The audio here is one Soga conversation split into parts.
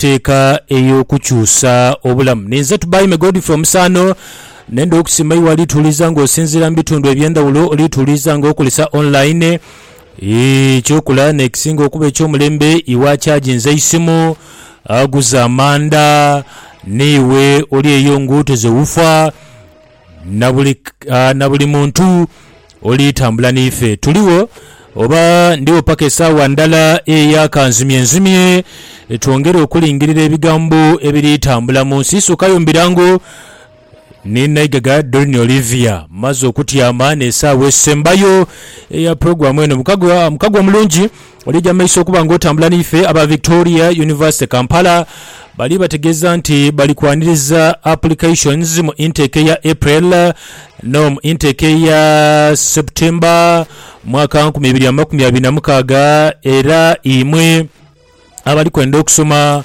teeka ey'okukyusa obulamu. Ninze Tubaime Godfrey Omusaano. Nenda okusiima iwe alituwuliza nga osinziira mu bitundu eby'endhawulo, olituwuliza nga okozesa online. Eky'okola n'ekisinga okuba eky'omulembe, iwe achaginze eisimu, aguze amanda, n'iwe oli eyo ng'otoze wufa, Na buli, ah, na buli muntu oli tambula n'ife. Tuligho, oba ndigho paka esaawa ndala eya kanzimye nzimye, twongere okulingirira ebigambo ebiri tambula mu nsi. Sukayo mbirango, ni Naigaga Doreen Olivia. Mmaze okutyama n'esaawa esembayo eya pulogulaamu eno. Mukagwa, Mukagwa mulungi, Olija mu maiso okuba nga otambula n'ife aba Victoria University Kampala bali bategeeza nti bali kwaniriza applications mu intake eya April no mu intake eya September mwaka nkumi ibiri amakumi abiri na mukaaga era imwe abali kwenda okusoma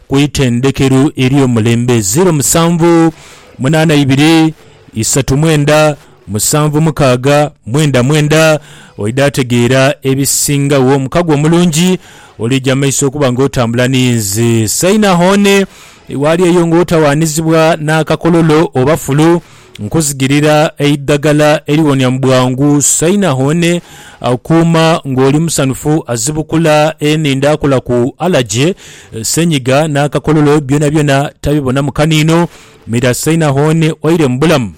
ku itendhekeru ery'omulembe, ziro musanvu munaana ibiri isatu mwenda musanvu mukaaga mwenda mwenda. Oidha ategeera ebisingagho. Omukago omulungi olija mu maiso okuba nga otambula ni nze. Saina hone, waali eyo nga otawaanizibwa n'akakololo oba fulu. Nkuzigirira eidhagala eriwonia mu bwangu. Sainahoone akuuma ng'oli musanhufu, azibukula enhindho akola ku alaje, senyiga n'akakololo byonabyona tabibonamu kaniino. Mira Sainahoone waire mu bulamu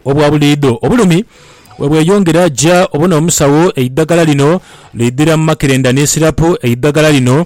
obwa buliidho. Obulumi bwe bweyongera ja obona omusawo eidhagala lino lidhira mu makerenda ni sirapu. Eidhagala lino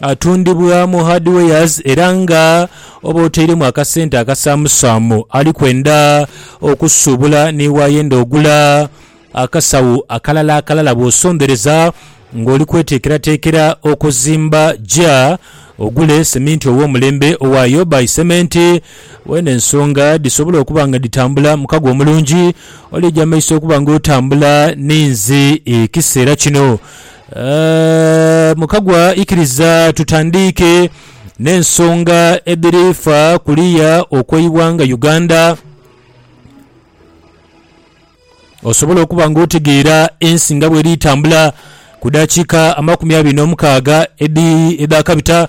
Atundibwa mu hardwares era nga oba otairemu akasente akasaamusaamu ali kwenda okusuubula ni waayenda ogula akasawo akalala akalala bw'osondereza ng'oli kweteekerateekera okuzimba ja ogule seminti ow'omulembe owa Yobai Cement weene ensonga dhisobole okuba nga dhitambula mukago omulungi oli eja maiso okuba ng'otambula ninzi ekiseera kino. Eeh, mukagwa ikiriza tutandiike n'ensonga edhiri fa kuliya okw'eighanga Uganda osobole okuba nga otegeera ensi nga bweri tambula ku dakiika amakumi abiri n'omukaaga edhakabita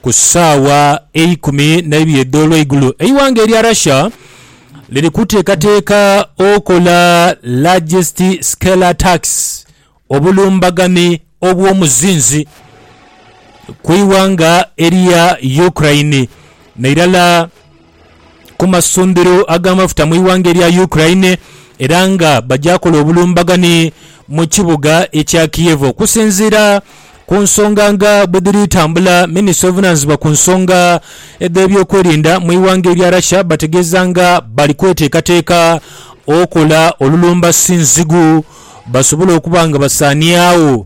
ku saawa eikumi n'eibiri edh'olweigulo. Eighanga erya Russia liri kuteekateeka okola largest scale attacks Obulumbagane obw'omuzinzi ku ighanga erya Ukraine n'irala ku masundhiro ag'amafuta mu ighanga erya Ukraine era nga baja kola obulumbagane mu kibuga ekya Kiev okusinziira Ku nsonga nga bwe dhiri tambula, minisita ovunaanyizibwa ku nsonga edh'ebyokwerinda mu ighanga erya Russia bategeeza nga bali kweteekateeka okola olulumba sinzigu basobole okuba nga basaaniagho.